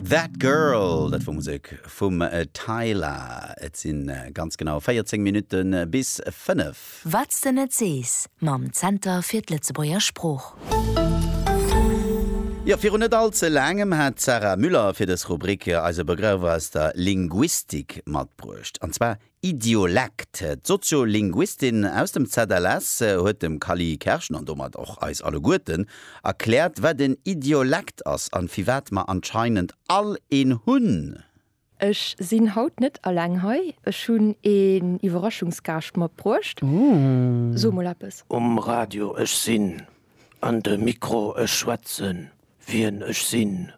That Girl, dat wor Musek vum Tyla. Et si ganz genau 14 Minutte bis 5. Wat s de net sees mam Zenter fir d'Lëtzebuerger Sprooch. Jo, virun net all ze laangem hat d'Sarah Müller fir dës Rubrik eis e Begrëff aus der Linguistik matbruecht, an zwar Idiolekt. D'Soziolinguistin aus dem ZLS huet dem Kally Kerschen, an domat och eis alleguerten, erkläert, wat en Idiolekt ass an firwat mer anscheinend all een hunn. Ech sinn haut net alleng hei, ech hunn een Iwwerraschungsgaascht matbruecht. So mol eppes. Um Radio, ech sinn. An de Mikro, Ech schwätzen, wien ech sinn.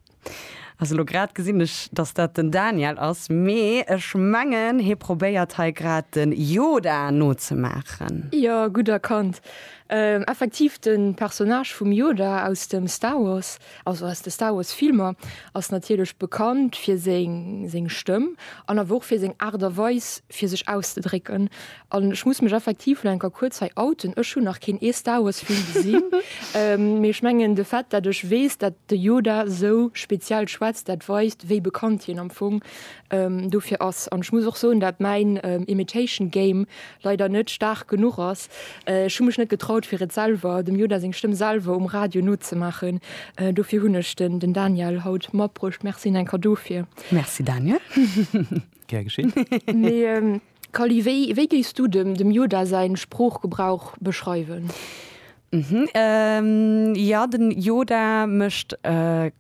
Also elo grad gesinn ech, dass dat den Daniel ass, mee ech mengen, hie probéiert hei grad de Yoda nozemaachen. Jo, gutt erkannt. Effektiv de Personnage vum Yoda aus dem Star Wars. Also aus de Star Wars Filmer ass natierlech bekannt fir seng seng Stëmm an awer och fir seng Aart a Weis fir sech auszedrécken. An ech muss mech effektiv elo eng Kéier kuerz hei outen, ech hunn nach keen ee Star Wars Film gesinn, mee ech mengen de Fait dat ech weess dat de Yoda sou speziell schwätzt, dat weist wéi bekannt hien am Fong dofir ass. An ech muss och soen dat mäin Imitation Game leider net staark genuch ass. Ech hu mech net getraut fir et selwer, dem Yoda seng Stëmm selwer um Radio nozemaachen. Dofir hunn ech den den Daniel haut matbruecht. Merci Nenka dofir. Merci Daniel. Gär geschéen. Mee Kally, wéi wéi géifs du dem dem Yoda säin Sproochgebrauch beschreiwen? Mhm, jo, den Yoda mécht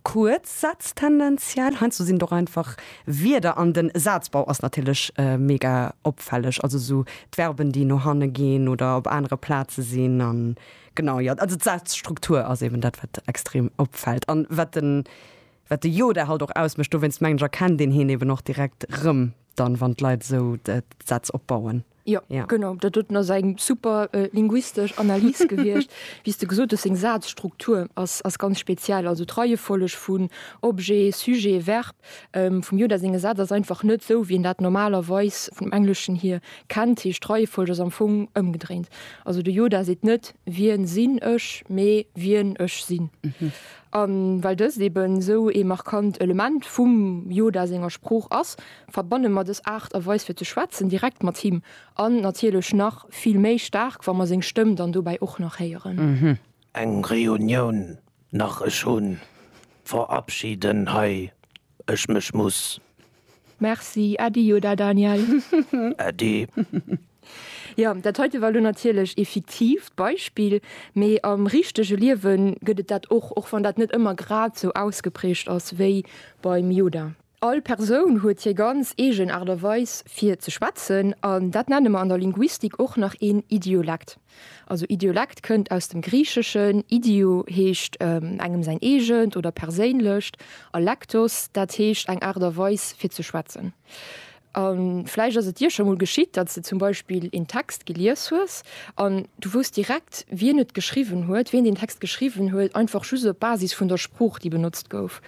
kuerz Sätz tendenziell. Heiansdo sinn et och einfach Wierder an den Sazbau ass natierlech mega opfälleg, also esou d'Verben déi no hanne ginn oder op anere Plaze sinn an genau jo, also d'Sazstruktur ass eben dat wat extrem opfält an wat den wat de Yoda halt och ausmécht. Dowéinst mengen ech erkennt een hien eben och direkt rëm dann wann d'Leit esou d'Sätz opbauen. Jo, ja. genau, dat huet ass eng super äh, linguistesch Analys gewiescht. Wéi de gesot huet, seng Sazstruktur ass, ass ganz speziell. Also d'Reiefolleg vun Objet, Sujet, Verb ähm, vum Yoda senge Saz ass einfach net sou, wéi en dat normalerweis vum Engleschen hier kennt. Heescht d'Reiefolleg ass am Fong ëmgedréint. Also de Yoda seet net wien sinn ech, mee wien ech sinn. Mhm. An well dëst eben sou ee markant Element vum Yoda senger Sprooch ass, verbanne mer dës Aart a Weis fir ze schwätzen direkt mat him an natierlech nach vill méi staark, wa mer seng Stëmm dann dobäi och nach héieren. Eng Reunioun nach, ech hu verabschieden hei ech mech, muss. Merci, äddi, jo da Daniel. Äddi. Jo, dat heite war elo natierlech ee fiktiivt Beispill, mee am richtege Liewe gëtt et dat och, och wann dat net ëmmer grad sou ausgeprägt ass wéi beim Yoda. All Persoun huet hir ganz eegen Aart a Weis fir ze schwätzen an dat nenne mer an der Linguistik och nach een Idiolekt. Also Idiolekt kënnt aus dem Griicheschen, Idio heescht engem säin eegent oder perséinlecht a lektos, dat heescht eng Aart a Weis fir ze schwätzen. A vläicht ass et dir scho mol geschitt, datt s de zum Beispill een Text gelies hues an du wousst direkt, wien et geschriwwen huet, wien deen Text geschriwwen huet, einfach just op Basis vun der Sprooch, déi benotzt gouf.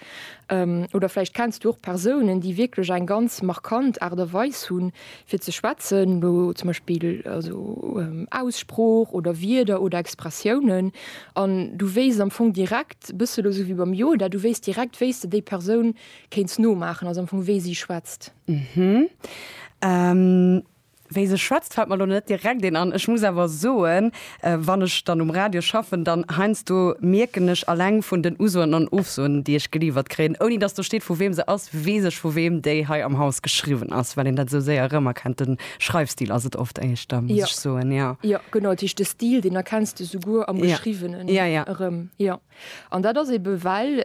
Oder vläicht kenns du och Persounen, déi wierklech eng ganz markant Aart a Weis hu fir ze schwätzen, elo zum Beispill also Aussprooch oder Wierder oder Expressiounen, an du wéisst am Fong direkt, e bësse elo esou wéi beim Yoda, du wéisst direkt, wéi s de déi Persoun Kéints nomaachen, also am Fong wéi si schwätzt. Hm. Wéi se schwätzt fällt mer elo net direkt een an. Ech muss awer soen, wann ech dann um Radio schaffen, dann heiansdo mierken ech alleng vun den Usoen an Ofsoen, déi ech geliiwert kréien, ouni dass do steet vu weem se ass, weess ech vu weem déi hei am Haus geschriwwen ass, well een dat esou séier erëmerkennt. De Schreifstil ass et oft éischter, muss ech soen, jo. Jo, genau, dat heescht de Stil, deen erkenns de souguer am Geschriwwenen erëm, jo. An dat ass ebe well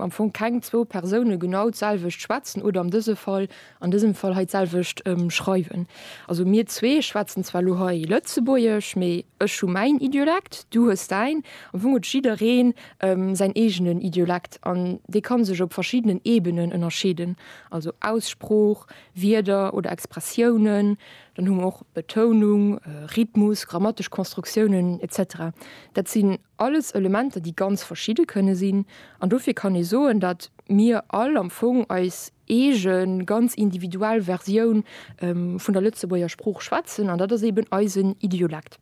am Fong keng zwou Persoune genau d'selwecht schwätzen oder an dëse Fall, an dësem Fall hei d'selwecht schreiwen. Also mir zwee schwätzen zwar elo hei Lëtzebuergesch, mee ech hu mäin Idiolekt, du hues däin. Am Fong huet jidderee säin eegenen Idiolekt an dee ka sech op verschiddenen Ebenen ënnerscheeden, also Aussprooch, Wierder oder Expressiounen. Dann hu mer och Betounung, Rhythmus, grammatesch Konstruktiounen, etc. Dat sinn Alles Elementer, déi ganz verschidde kënne sinn. An dofir kann ee soen, datt mir all am Fong eis eege ganz individuell Versioun vun der Lëtzebuerger Sprooch schwätzen, an dat ass eben eisen Idiolekt.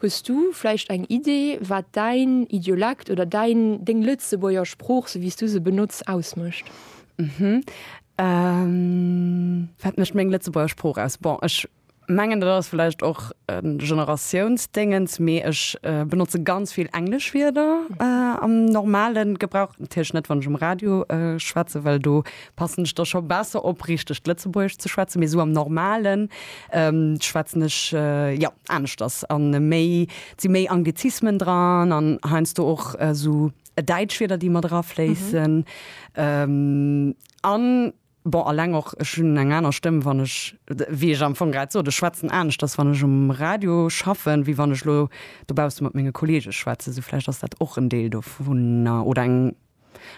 Hues du vläicht eng Idee, wat däin Idiolekt oder däin, deng Lëtzebuerger Sprooch, sou wéi s du se benotz, ausmécht? Wat mécht meng Lëtzebuerger Sprooch aus? Bon, ech mengen dat ass vläicht och e Generatiounsdéngens, mee ech benotze ganz vill englesch Wierder am normale Gebrauch. Natierlech net, wann ech um Radio schwätze, well do passen ech da scho besser op, richtegt Lëtzebuergesch ze schwätzen. Mee esou am Normalen schwätzen ech, jo, aneschters an méi, et si méi Anglizismen dran an heiansdo och esou däitsch Wierder, déi mat erafléissen an. Bon, alleng och, ech hunn eng aner Stëmm, wann ech, wéi ech am Fong grad sot, ech schwätzen aneschters, wann ech um Radio schaffen, wéi wann ech elo dobausse mat menge Kolleege schwätzen. Sou vläicht ass dat och en Deel dovunner oder eng,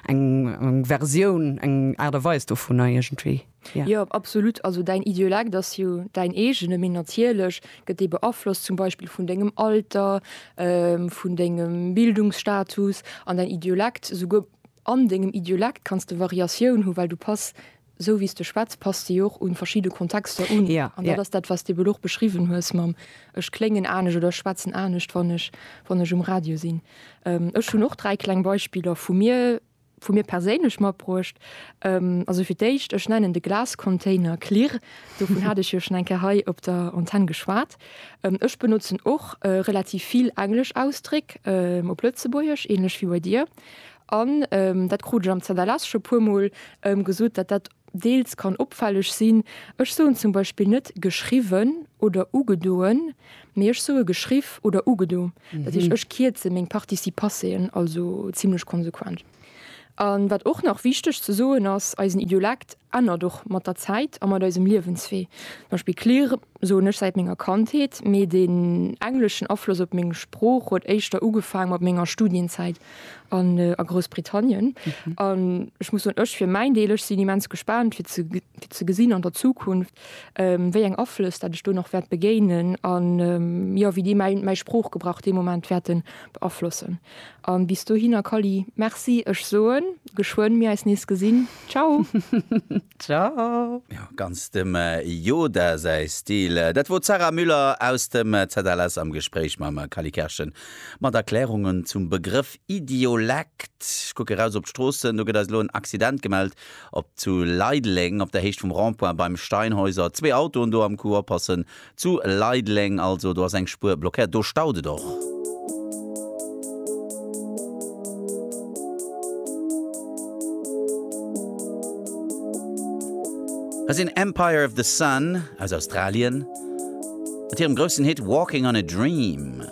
eng Versioun, eng Aart a Weis dovunner iergendwéi, jo. Jo, absolut. Also däin Idiolekt ass jo däin eegene, mee natierlech gëtt dee beaflosst zum Beispill vun dengem Alter, vun dengem Bildungsstatus an däin Idiolekt souguer, An dengem Idiolekt kanns de Variatioun hu well du pass, sou wéi s de schwätz, pass de jo och un verschidde Kontexter un. An dat ass dat wat s de ewell och beschriwwen hues mam ech kléngen anescht oder ech schwätzen anescht wann ech wann ech um Radio sinn. Ech hunn och dräi kleng Beispiller vu mir vu mir perséinlech matbruecht. Also fir d'éischt, ech nennen de Glascontainer Klirr, dovun hat ech jo schon eng Kéier hei op der Antenn geschwat. Ech benotzen och relativ vill englesch Ausdréck op Lëtzebuergesch, ähnlech wéi bei dir. An dat krut ech am Zanderless scho puer mol gesot, datt dat deels kann opfälleg sinn. Ech soen zum Beispill net geschriwwen oder ugedoen, mee ech soe geschriff oder ugedo. Dat heescht, ech kierze meng Participasseen also zimmlech konsequent. A wat och nach wichteg ze soen ass, Eisen Idiolekt ännert och mat der Zäit a mat eisem Liewenswee. Zum Beispill clear soen ech säit menger Kandheet, mee den engleschen Afloss op meng Sprooch huet éischter ugefaang mat menger Studienzäit a Groussbritannien. An ech muss soen, ech fir mäin Deel, ech sinn immens gespaant fir ze fir ze gesinn an der Zukunft wéi eng Aflëss dat ech do nach wäert begéinen an jo wéi déi mäi mäi Sproochgebrauch dee Moment wäerten beaflossen. An bis dohinner Kally, merci, ech soen geschwënn mir eis nees gesinn, ciao! Ciao! Jo, ganz dem Yoda säi Stil. Dat wor d'Sarah Müller aus dem ZLS am Gespréich mam Kally Kerschen mat Erklärungen zum Begrëff Idiolekt. Ech kucke raus op d'Stroossen, do gëtt eis elo en Accident gemellt op zu Leideleng op der Héicht vum Rond-point beim Steinhäuser. Zwee Autoen do am Coup oppassen. Zu Leideleng also, do ass eng Spuer blockéiert, do staut et och. Hei sinn Empire of the Sun aus Australien mat hirem groussen Hit Walking on a Dream.